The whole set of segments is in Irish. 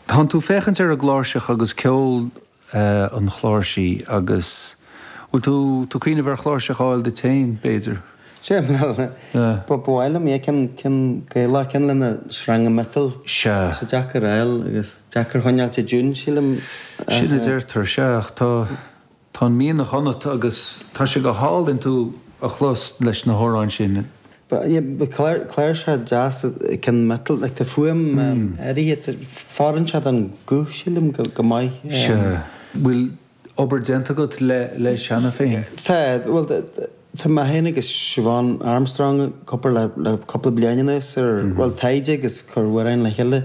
Tánn tú ag féachaint ar an gcláirseach agus ceol an chláirsí agus bhfuil tú tú cuimhneamh ar chláirseach a fháil duit féin, b'fhéidir? Sea, bhuel, ba mhaith liom é, ceann, ceann Gaelach, ceann lena sreanga miotail. Sea. Sea, deacair a fháil agus deacair a choinneáilt i dtiún, sílim. Sin a deirtear, sea, ach tá. Tá an mianach ionat agus tá sé go hálainn tú a chlos leis na hamhráin sin. Cláirsí, cláirsí deasa, cinn mhiotail, like tá fuaim áirithe, fóireann siad don ghuth sílim go maith. Sea. Bhfuil obair déanta agat leis cheana féin? Tá, bhuel tá mé féin agus Siobhán Armstrong ag obair le cúpla bliain anuas ar, bhuel taighde agus ag cur amhráin le chéile.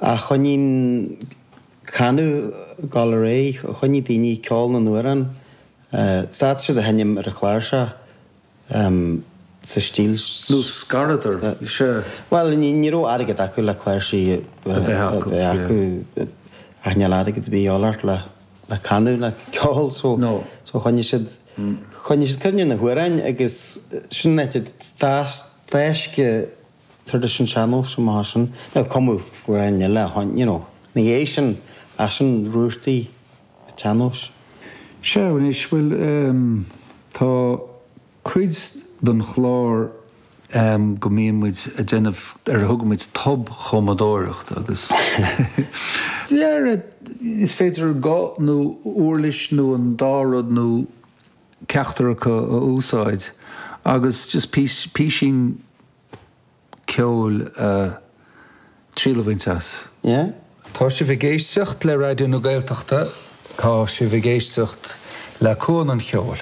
A choinnigh an canadh ag dul ar aghaidh, choinnigh daoine, ceol na n-amhrán, stad siad a sheinm ar an chláirseach sa stíl seo. Nó scaradar, sea. Bhuel, ní raibh airgead acu le cláirsí a bheith acu, ach níl airgead ar bith de dhíth ort le canadh, le ceol, so choinnigh siad, choinnigh siad cuimhne ar na hamhráin agus sin an áit a d'fhás, d'fhás. traidisiún an tsean-nóis amach as sin. Nó cumadh amhráin eile a tháinig, you know. Ina dhiaidh sin, ach sin rútaí an tsean-nóis. Sea anois, bhuel ehm, tá cuid den chlár ehm go mbíonn muid a' déanamh ar a dtugaimid tobchumadóireacht agus dhera is féidir guth nó uirlis nó an dá rud nó. ceachtar acu a úsáid agus just píosa, písín ceoil triail a bhaint as. Yeah? Tá sibh ag éisteacht le Raidió na Gaeltachta, tá sibh ag éisteacht le Cuan an Cheoil.